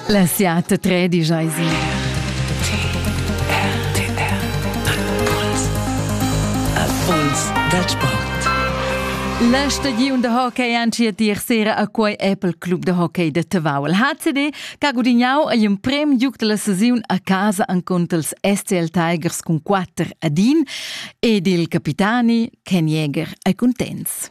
La siata tredisch eis Puls dal sport. La stagiun da hockey anci a dir sera a quei Apple Club de hockey de Tavau. Il HCD che ha gudignau il prem giug della saziun a casa an contro els SCL Tigers cun 4 ad 1 ed il capitani Ken Jäger ei contents.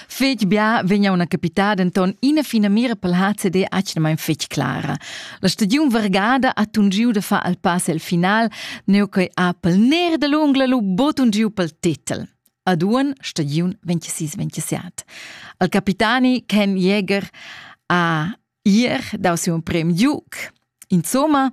Fetg bia vegna una capitada enton ina fina mira pel HCD atgnamain fetg clara. La stagiun vergada ha tungiu da far al pass el final, neu che ha pel ner da l'ungla lu botun giu pel titel. Aduan stagiun 26-27. Al capitani Ken Jäger ha Ier dau siu prem giug. Insomma,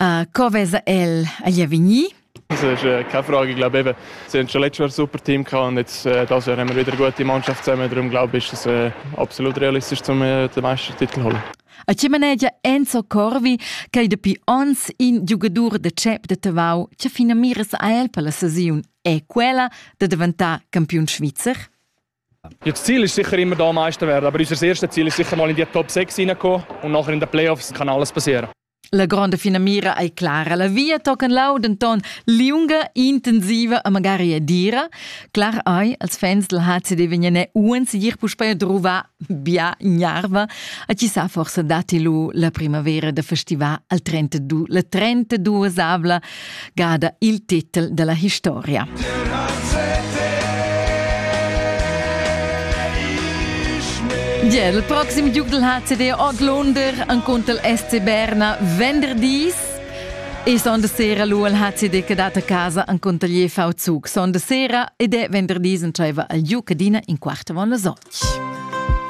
uh, co vesa el agli avegnir? Es keine Frage, ich glaube eben, sie haben schon letztes Jahr ein super Team gehabt und jetzt äh, dieses Jahr haben wir wieder eine gute Mannschaft zusammen, darum glaube ich, ist es äh, absolut realistisch, um äh, den Meistertitel zu holen. A ce manegia Enzo Corvi che dapi ons in giugadur de CEP de Tavau che fina miras a el per la sesiun è quella de diventare campiun svizzer? Ja, das Ziel ist sicher immer da Meister werden, aber unser erstes Ziel ist sicher mal in die Top 6 hineinkommen und nachher in den Playoffs kann alles passieren. La gronda fina mira ei clara. La via tocan lau denton liunga, intensiva e magari e dira. Clar ei, als fans del HCD vegnene uans gir puspei drova bia gnarva, a chi sa forse dati lu la primavera da festival al 32, la 32 avla gada il titel dalla historia. Ja, il proxim giugl ha CD Oglunder an contel SC Berna venderdis e sonda sera lu al HCD che dat a casa an contalier V-Zug. Sonda sera ed è venderdis entscheiva al giu cadina in quart avon las otg.